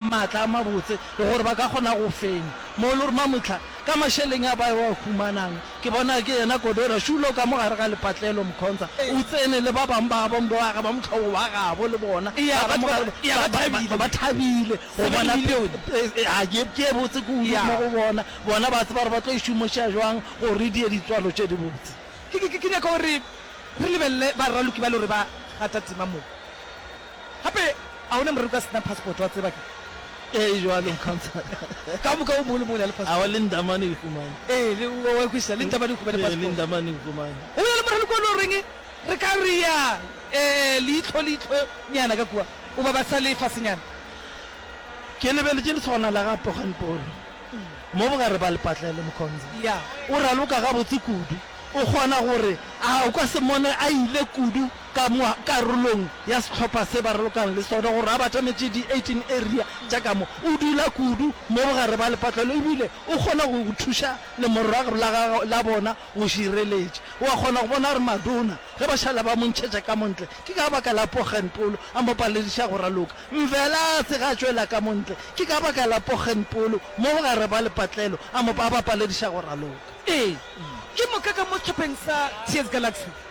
maatla a mabotse le gore ba ka kgona go fenya mo le gore mamohla ka mašeleng a ba wa humanang ke bona ke yena Kodora Shulo ka mo gare ga lepatlelo Mkhonza o tsene le ba bang ba gabo mbe wa gabo mohlobo wa gabo le bona ba ba thabile go bona ga ke ke botse ke udu mo go bona bona ba tseba gore ba tlo e šomoša jwang go re di ye di tswalo tše di botse ke nyaka gore re lebelele ba raloki ba le gore ba gata tema mo. Gape a o ne moreri ka se na passport, wa tseba ke. Ee, e bjalo, Mokhantsana. Ka moka o mongwe le mongwe o ne a le passport. Aowa, le Ndamane o e humane. Ee, le, o a e kwešiša, le Ndamane o humane passport. Ee, le Ndamane o e humane. Go ya le morali kua le o reng, re ka re ya, ee, leihlo, leihlonyana ka kua, o ba ba sa le fasenyana. Ke lebeletše lesogana la ga Poganpolo mo bogare ba lepatlele, Mokhonza. Ya. O raloka gabotse kudu. O kgona go re, a o ka se mmone a ile kudu ka mo karolong ya sehlopha se ba ralokang le sona gore a batametše di-18 area tša ka mo. O dula kudu mo bogare ba lepatlelo e bile o kgona go go thuša lemorrago la gagwe la bona go šireletša. O a kgona go bona gore Madona ge ba šala ba mo ntšhetša ka mo ntle ke ka baka la Poggenpoel a mo palediša go raloka. Mvelase ge a tšwela ka mo ntle ke ka baka la Poggenpoel mo bogare ba lepatlelo a mo a ba palediša go raloka. Ee, ke moka ka mo sehlopheng sa TS Galaxy.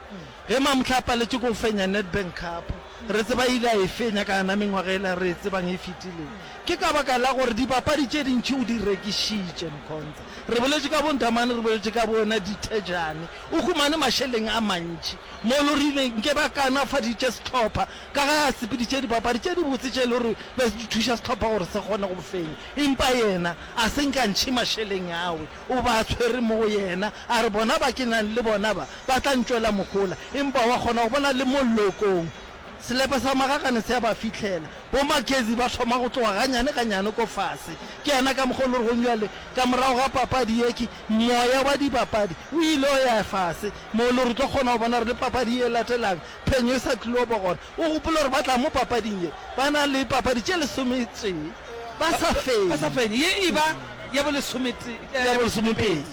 Ge Mamhle a paletše ke go fenya Nedbank Cup, re tseba a ile a e fenya ka yona mengwaga yela re e tsebang e fetilego. Ke ka baka la gore dibapadi tše dintši o di rekišitše. Mkhonza, re boletše ka boNdamane, re boletše ka bona Dithejane. O humane mašeleng a mantši. Molo, re ile nke ba kaonafaditše sehlopha ka ge a sepeditše dibapadi tše dibotse tše e le gore be di thuša sehlopha gore se kgone go fenya. Empa yena a se nkantšhe mašeleng awe. O ba tshwere mo go yena, a re, Bona ba ke nang le bona ba, ba tla ntšwela mohola. Empa wa kgona go bona le mo llokong, selepe sa magakane se a ba fihlela. Bo-Mackenzie ba thoma go tloga ganyane ganyane ko fase. Ke yana ka mokgwa o le rego bjale, ka morago ga papadi ye, ke, moya wa dibapadi o ile o ya fase, mo le re tlo kgona go bona gore le papadi ye e latelang, phenyo e sa tlil'o ba gona. O gopola gore ba tla mo papading ye, ba na le papadi tše lesometee ba sa fenye. Ba sa fenye, ye e ba ya bolesometee, ya bolesomepedi.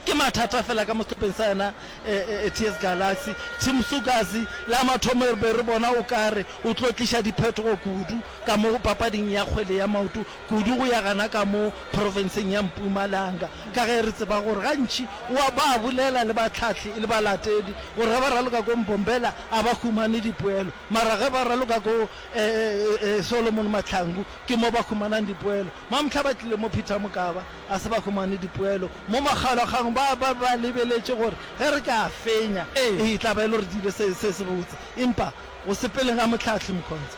Ke mathata fela ka mo sehlopeng sa yena TS Galaxy. Tim Sukazi la mathomo re be re bona o ka re o tlo tliša diphetogo kudu ka mo papading ya kgwele ya maoto, kudu go ya gana ka mo profenseng ya Mpumalanga, ka ge re tseba gore gantši o a ba bolela le bahlahli e le balatedi gore ge ba raloka ko Mbombela a ba humane dipoelo mara ge ba raloka ko Solomon Mahlangu ke mo ba humanang dipoelo. Mamhla ba tlile mo Peter Mokaba a se ba humane dipoelo mo makgalwakgang ba ba ba lebeletše gore ge re ka fenya e tla ba e le gore di ile se se botse empa go sepeleng ga mohlahli Mkhonza.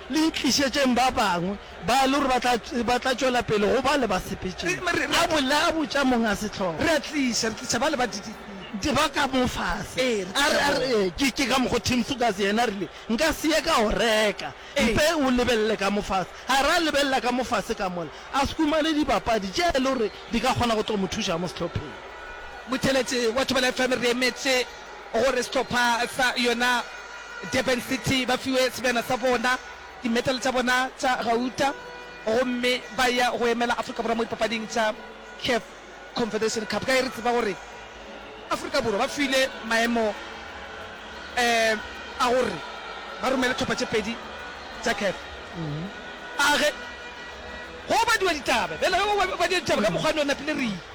Le itlišetšeng ba bangwe, ba le gore ba tla tšwela pele go ba le basepetšeng. A bolela, a botša monga sehlogo. Re a tliša, re tliša ba le ba di. Di ba ka mo fase. Ee, re tliša bona. A re, Ke ka mokgo Tim Sugas yena a rile, Nka se ye ka o reka. Mpe o lebelele ka mo fase. A re a lebelela ka mo fase ka mola, a se humane dibapadi tše e le gore di ka kgona go tlo mo thuša mo sehlopheng. Motheletse wa Thobela FM re emetše. gore sehlopha sa yona Durban City ba fiwe sebjana sa bona, dimedale tša bona tša gauta gomme ba ya go emela Afrika Borwa mo dipapading tša CAF Confederation Cup. Ka ge re tseba gore Afrika Borwa ba file maemo a gore ba romele tlhopha tše pedi tša CAF a ge go badiwa ditaba bjale ge go badiwa ditaba ka mokgwane o napile re